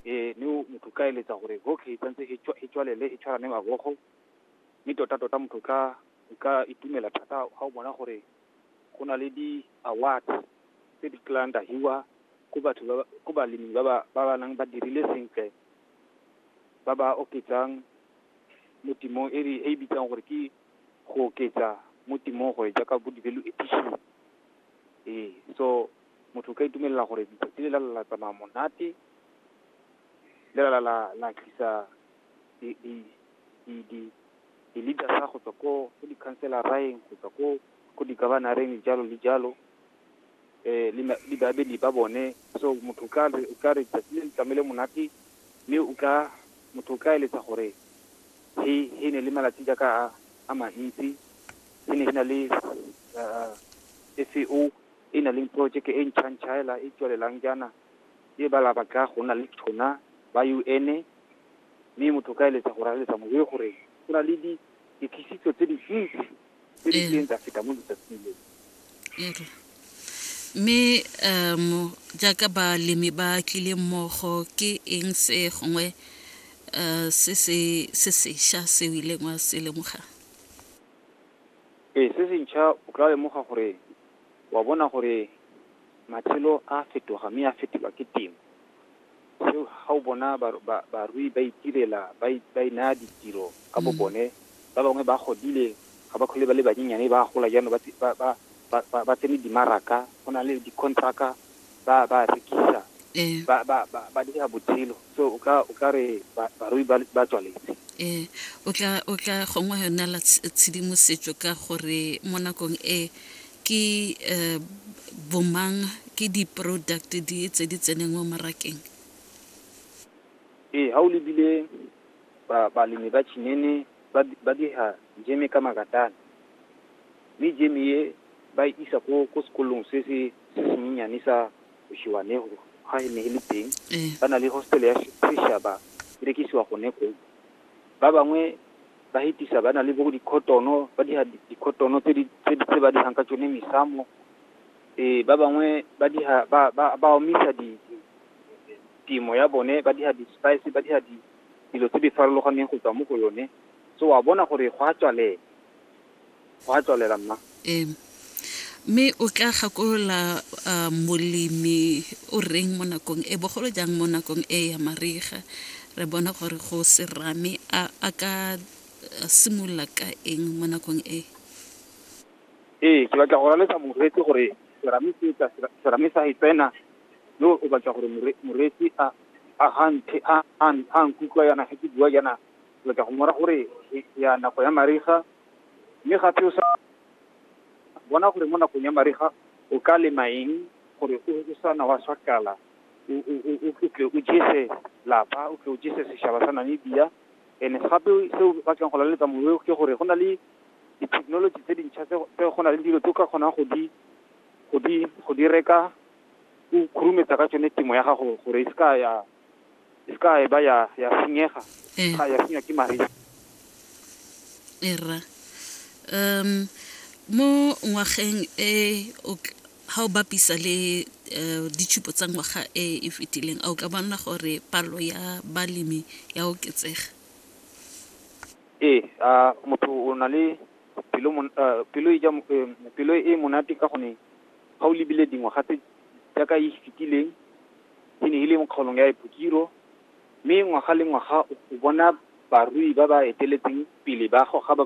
ee mme o motho ka eletsa gore okay tsantse e tswa- e tswalele e tshwarane mabogo mme tota tota motho ka o ka itumela thata ga o bona gore go na le di-award tse di tlang da hiwa ko batho ba ba- ko balemi ba ba ba ba nang ba dirile sentle ba ba oketsang mo timong e re- e e bitsang gore ke go oketsa mo timong gore jaaka bo di-value addition ee so Motho o ka itumelela gore letsatsi le la la tsamaya monate, le la la la tlisa di di di di di leaders go tswa ko go di counciloreng go tswa ko ko di governoreng jalo le jalo eh le le babedi ba bone so motho ka re ka re tsatsi le tlamele monate mme o ka motho ka eletsa gore he he ne le malatsi jaaka a a mantsi he ne na le SEO e na leng porojeke e ntšhantšhaela e tswelelang jaana e bala ba tla go nna le tona ba UN mme motho ka eletsa go raleletsa mowe gore go na le dikisitso tse dintsi tse di tleng tsa feta mo letsatsing le. Okay. mme um jaaka balemi ba tlile mmogo ke eng se gongwe um se se se sešwa se o ileng wa se lemoga ee se sentšha o tla lemoga gore wa bona gore matshelo a fetoga mme a fetoga ke temo. Seo ga o bona barui ba itirela ba e naya ditiro ka bo bone, ba bangwe ba godile ga ba kgole ba le banyenyane ba gola jaanong ba tsene dimaraka, go na le di-contract-a ba ba rekisa eh. ba ba ba ba dira botshelo so o ka o ka re barui ba ba tswaletse eh o tla o tla gongwe yona la tshedimosetso ka gore mo nakong e ke eh, bomang ke di-product di tse di tseneng mo marakeng ee ga o lebile balemi ba chinene ba dira jeme ka makatane mme jeme e ba e isa ko sekolong se se se senyenyane sa Oshiwanego ga he ne he le teng Ee. ba na le hostele ya se- seshaba e rekisiwa gone koo ba bangwe ba hetisa ba na le bo dikhotono ba diha di- dikhotono tse di tse di- tse ba dihang ka tsone mesamo ee ba bangwe ba diha ba ba ba omisa di di- temo ya bone ba diha di-spice ba diha di dilo tse di farologaneng go tswa mo go yone so wa bona gore go a tswalela Go a tswalela, mma. Ee. Mme o tla gakolola molemi o reng mo nakong e, bogolo jang mo nakong e ya mariga. Re bona gore go serame a ka simolola ka eng mo nakong e. Ee, ke batla go laletsa moreetsi gore serame se tla serame sa e tsena yo o batla gore moreetsi a a nkutlwa yana ga ke bua yana o tla go mora gore e- ya nako ya mariga mme gape o sa bona gore mo nakong ya mariga o ka lema eng gore o o sa na wa swakala o o- o- o- o tle o jese lapa o tle o jese setšhaba sa namibia and gape seo o batlang go laletsa mowe ke gore go na le di-technology tse dintšha tse tse go na le dilo tse o ka kgonang go di go di go di reka o khurumetsa ka tsone temo ya gago gore e se ka ya e se ka e ba ya ya senyega Eh. ga ya senywa ke mariga e rra um mo ngwageng e o tl- ha o bapisa le eh, ditshupo tsa ngwaga e e fetileng a o ka bona gore palo ya balemi ya oketsega ee a motho o na le pelo mon- ah, pelo e ja mo- eh, pelo e monate ka gone ga o lebile dingwaga tse jaaka e fetileng E ne e le mo kgaolong ya Epokiro, mme ngwaga le ngwaga o bona barui ba ba eteletseng pele ba goga ba